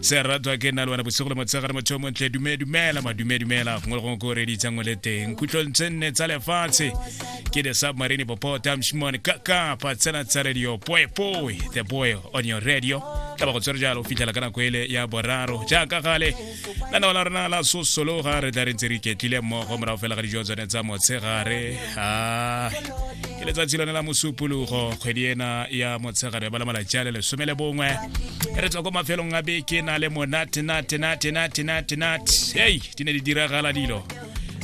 se ratwa ke nna le wena bosigo le motshegare motho o montle dume dumela madume dumela gongwe le gongwe ko redi tsangwe le teng khutlong tse nne tsa lefatshe ke the submarine popo tamshimone kaka patsena tsa radio poepoe the boy on your radio tla ba go tswere jalo o fitlhela ka nako ele ya boraro jaaka gale la nao la rona la sosologa re tla re ntse re iketlile mmogo morago fela ga dijo tsone tsa motshegare ah, ke letsatsi lone la mosupologo kgwedi ena ya motshegare ba le malatsi a le lesome le bongwe re tswa ko mafelong a beke na le monate nate nate nate nate nate hei di ne di diragala dilo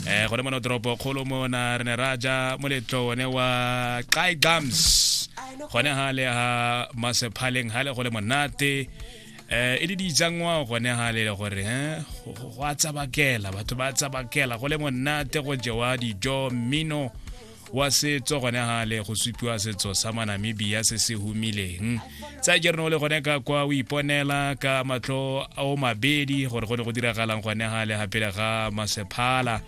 um gone mona toropo kgolo mona re ne ra ja moletlo one wa kai gums gone ga le ga masephaleng ga le go le monate eh e le dijangwa gone ga le gore eh, go a tsabakela batho ba tsabakela go le monate go jewa dijo mmino wa setso gone ga le go supiwa setso sa manamibia se se humileng tsa jereno o le gone ka kwa o iponela ka matlho o mabedi gore go ne go diragalang gone ga le gapele ga masephala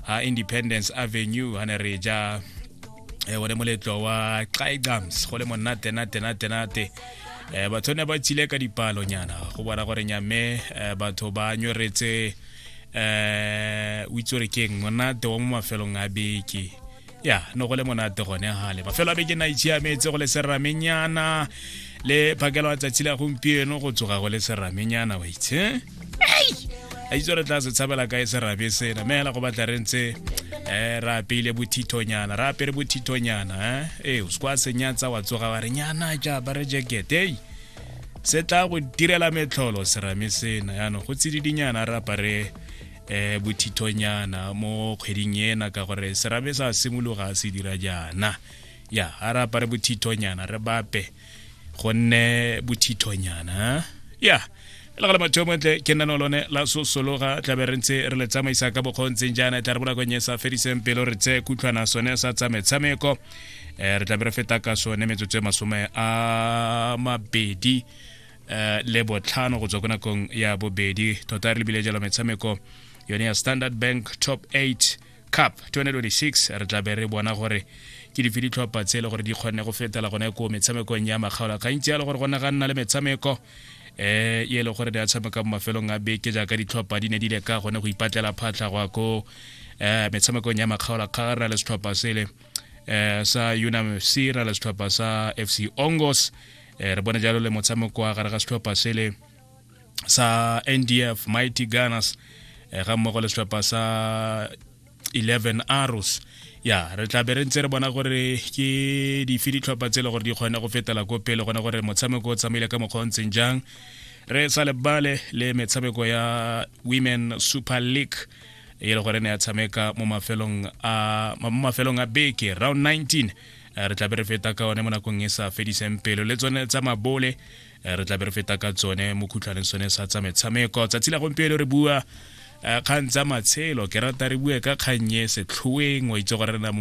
a independence avenue ha ne re ja eh, one moletlo wa xaigams go le monate nate nate nate eh, batho ne ba tsile ka dipalonyana go bona gore nyame eh, batho ba nyoretse eh, o itse gore keng monate wa mo mafelong a beke ya no go le monate gone gale mafelo a beke na itshiametse go le seramenyana le phakelo ya tsatsi la gompieno go tsoga go le seramenyana wa itse a itse re tla se tshabela kae serabe sena meela go batla re ntse um re apeile bothithonyana re apere bothithonyana eh? ee o sekwa senyatsa wa tsoga wa re nyana ja ba re jekete ei se tla go direla metlholo serame sena yaanong go tsididinyana re apare eh bothithonyana mo kgweding ena ka gore serabe sa simologa se dira jaana ya a re apare bothithonyana re bape gonne bothithonyana ya yeah. le gale batho montle ke nna lone la sosologa tlabe re ntse re le tsamaisa ka bokgontseng jaana e tla re bonakong e sa fediseng pelo re tseye kutlhwana sone sa tsa metshameko um re tlabe re feta ka sone metsotso e masome a mabedi um le botlhano go tswa ko nakong ya bobedi tota re lebile jalo metshameko yone ya standard bank top 8 cup 2026 re tla be re bona gore ke dife ditlhopha tse e le gore di kgonne go fetela gone ko metshamekong ya makgaola gantsi yalo gore go ne ga nna le metshameko eh e le gore di a tshameka mo mafelong a beke jaaka ditlhopha di ne di le ka gone go ipatlela phatlha go ko eh metshamekong ya makgaola kga ra le setlhopha sele eh sa UNAMFC ra le setlhopha sa FC Ongos eh, re bone jalo le motshameko wa gare ga setlhopha sele sa ndf mighty gunners eh, ga mmogo le setlhopha sa 11 arrows ya re tla be re ntse re bona gore ke dife ditlhopha tse e le gore di kgone go fetela ko pele gone gore motshameko o tsamaile ka mokgwa o ntseng jang re sa lebale le metshameko ya women super league e le gore ne ya tshameka mo mafelong a beke round 19 re tlabe re feta ka one mo nakong e sa fediseng pelo le tsone tsa mabole re tlabe re feta ka tsone mo khutlhwaneng sone sa tsa metshameko tsatsi la gompieno re bua kgang tsa matshelo ke rata re bue ka kgannye setlhoeng wa itse gore re na mo